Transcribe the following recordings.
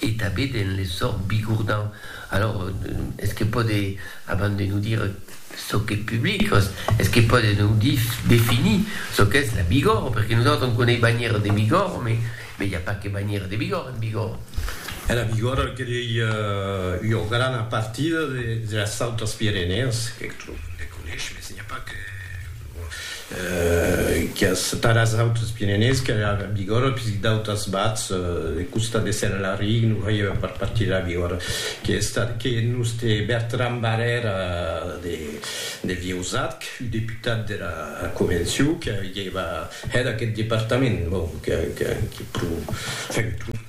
E tabé den le sòrt bigourdan. Alors, es que pòde, abans de nos dire çò qu'es public, es que pòde nos dire, definir çò qu'es la Bigòrre, perque nosautres on coneis banhièra de Bigòrre, mais mais i a pas que banhièra de Bigòrre en Bigòrre. E la Bigòrre que ei ua grana partida de las Autes Pirenèas, que eth tròp le coneis, mais n'i a pas que. Qu'es per as autres Pirenèus que la Bigòrra, puisque d'autas bats de costa dessen a la Rig, non veièva per partir la Bigòrra. Qu'ei estat que nos te Bertran Barrèra de Vieusat, que fui deputat de la Convencion, que avièva hèt aqueth departament. Bon, que pro fèu tot.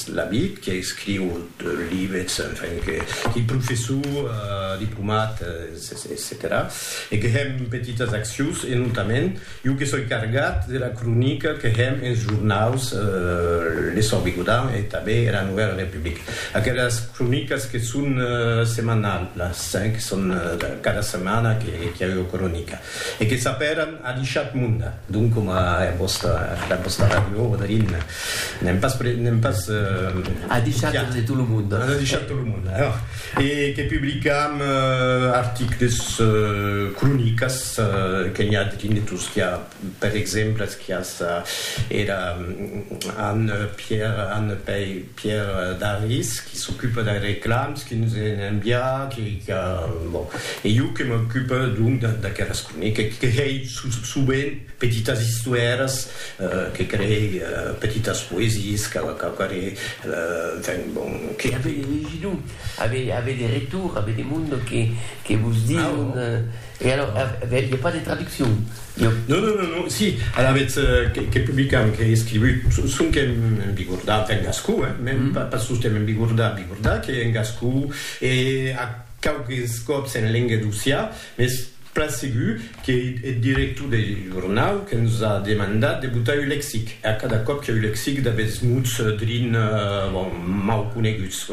L'amic que escriu de lives, enfin que qui professor, diplomat, etcetèra e que hèm petitas accions e notament iu que soi cargat de la cronica que hèm ins jornaus L'Essor Bigodan e tanben era Novèla Republica. Aquelas cronicas que son semanal las, hein, que son cada setmana que iau cronica. E que sapèran a dichat monde, donc coma era vòsta, era vòsta ràdio, Oderin, n'èm pas, n'èm pas. A dichat de tot lo monde. A dichat de tot lo monde, eh! E que publicam articles, cronicas, que n'i a drin de tot, qu'i a, per exemple, qu'i a era Anne Pierre, Anne Pei. Pierre Daris, qui s'ocupe dei reclams, qui nos en envia, qui, qui a, bon, e jo que m'ocupe donc d'aqueras cronica, que hei sovent petitas istoèras, que creei petitas poesies, que quauquarré, enfin, bon, que. E avei de legidor, avei de rector, avei de monde que, que vos dion, E alors, i a pas de traduccion? Non, non, non, non, si, alavetz que publicam, qu'ei escrivut, sonque en bigordà, enfin en gascon, hein, mèn pas sosten en bigordà, bigordà, qu'ei en gascon e a quauques còps en lenga d'Ossià, mès plan segur qu'ei eth director deth jornau que nos a demandat de botar un lexic, e a cada còp que'u lexic d'aguests mots drin, bon, mau coneguts.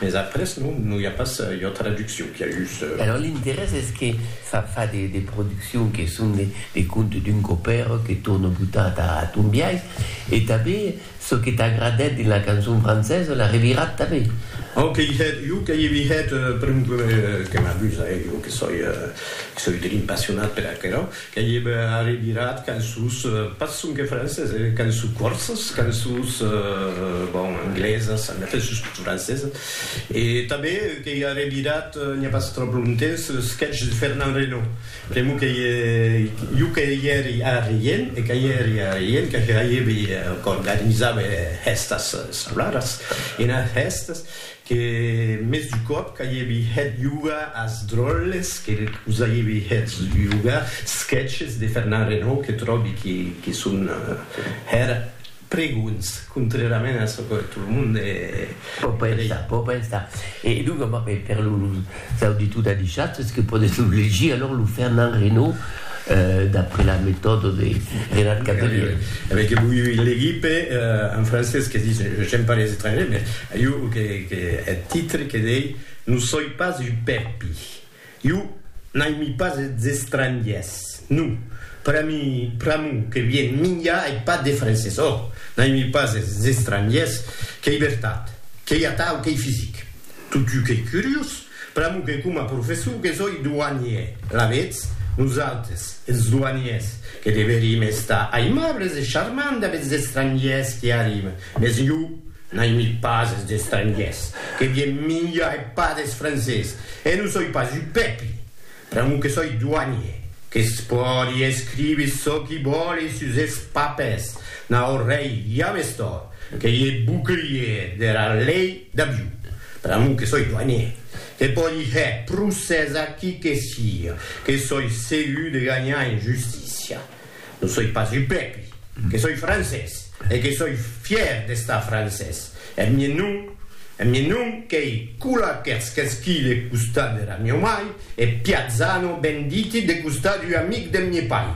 Mes après non, non i a pas ua traduccion, qu'i a just. Alors l'interès es que fa fa de de produccion que son de de contes d'un copèr que torna botar ta ton biais e tanben çò que t'agradèt dins la cançon francesa l'as revirat tanben. Au que i hèt, jo que i vi hèt, per un que m'abusa, eh, jo que soi, que soi drin passionat per aquerò, Qu'ei eb arribirat cançons, pas sonque francés, eh, cançons corsas, cançons, bon, anglesas, en effet, sustot francesas, e tanben qu'ei arribirat, n'i a pas tròp longtemps, sketch de Fernand Reynaud, pr'amor qu'ei jo que i èri a Rien, e que i èri a Rien, que hèibi, qu'organizava hèstas sablaras, enas hèstas, Que mès du còp qu'aievi hèt yoga as dròlles que us aievi hèt yoga, sketches de Fernand Reynaud que tròbi que son hèr pregunts, contrèrament a çò que tot lo monde. Pò pensar, pò pensar. E donc, per Cau de tot adishat es que pòdes lo legir alòr lo Fernand Reynaud d'après la metòda de Renat Cavelier. A veir que voi legir pe en francés que dis j'aime pas les étrangers mais iu que que eth titre que dei no soi pas un pèpi iu n'aimi pas es estrangiers no pera mi pr'amor que vien minjar ei pas de francés oh n'aimi pas es estrangiers qu'ei vertat qu'ei atau qu'ei fisic. Totjou qu'ei curiós, pr'amor que coma professor que soi douanier, alavetz, nosautres, es douaniers, que deverim estar aimables e charmants damb es estrangiers qui arriben, mès jo n'aimi pas es estrangiers, que vien minjar e pas des francés, e non soi pas un pèpi, Pr'amor que soi doanier, que's pòdi escriver çò qui vòle sus es papers, naut rei ja m'es tòrt, que i e bouclier dera lei d'aviu. Pr'amor que soi doanier, que pòdi hèr procès a qui que siga, que soi segur de ganhar en justícia. Non soi pas un pèpi, que soi francés e que soi fièr d'estar francés. Eth mien nom, eth mien nom qu'ei Kula Kerskeskil e costat dera mieu mai e Piazzano ben diti de costat d'ua amic deth mie pair.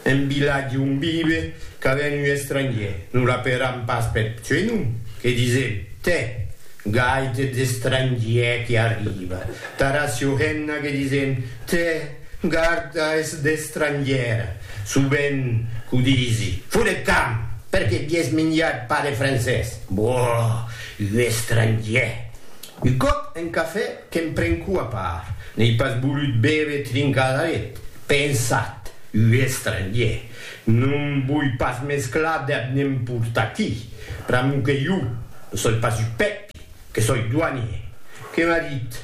En vilatge on vive cada un un estrangier, non l'aperam pas peth suei nom, que disem, tè! Gaite d'estrangier qui arriva. Tara Siuhenna que disen, Te, garda es d'estrangiera. Subent qu'o disi. Foret camp! Perque vies minjat pas de francés? Boh! Un estrangier! Un cop en cafè que'm prenco a part. N'ei pas volut béver trincar la let. Pensat! Un estrangier! Non voi pas mesclar deb n'emportar qui, pr'amor que iu ne soi pas u Pèpi, que soi doanier. Que m'as dit,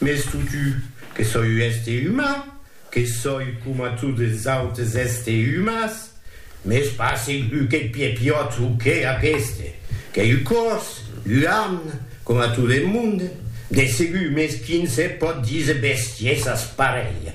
m'es foutu, que soi u èste umà, que soi coma tot es autes èste umàs, m'es pas segur qu'ei Piepiòt o qué aqueste, qu'ei u còrs, u amn, coma tot e monde, de segur, mès qui ne se pòt díser bestiesas parelhas.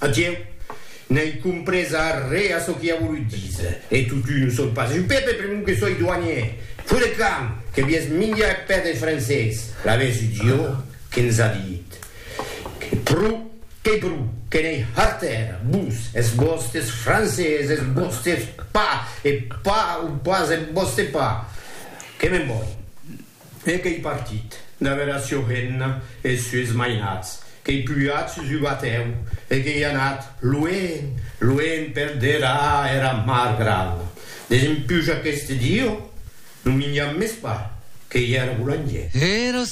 Adieu! N'ai comprés arré a çò qu'i a volut díser, e totun o son pas. Jo, Pepe, pr'amor que soi douanier, fo de camp, que vies minjar eth pè deth francés, l'aves idiot que ns a dit que pro, qu'ei pro, que n'ei harter, vos, es vòstes francés, es vòstes pa, e pa o pas eth vòste pa, que me'n voi. E qu'ei partit, darrèra sua renna e es sues mainats, qu'ei pujat sus ua batèu e qu'ei anat luenh, luenh per dera era mar grana, desempuja qu'este dieu non minja mès pas, qu'ei era bolangièr. Era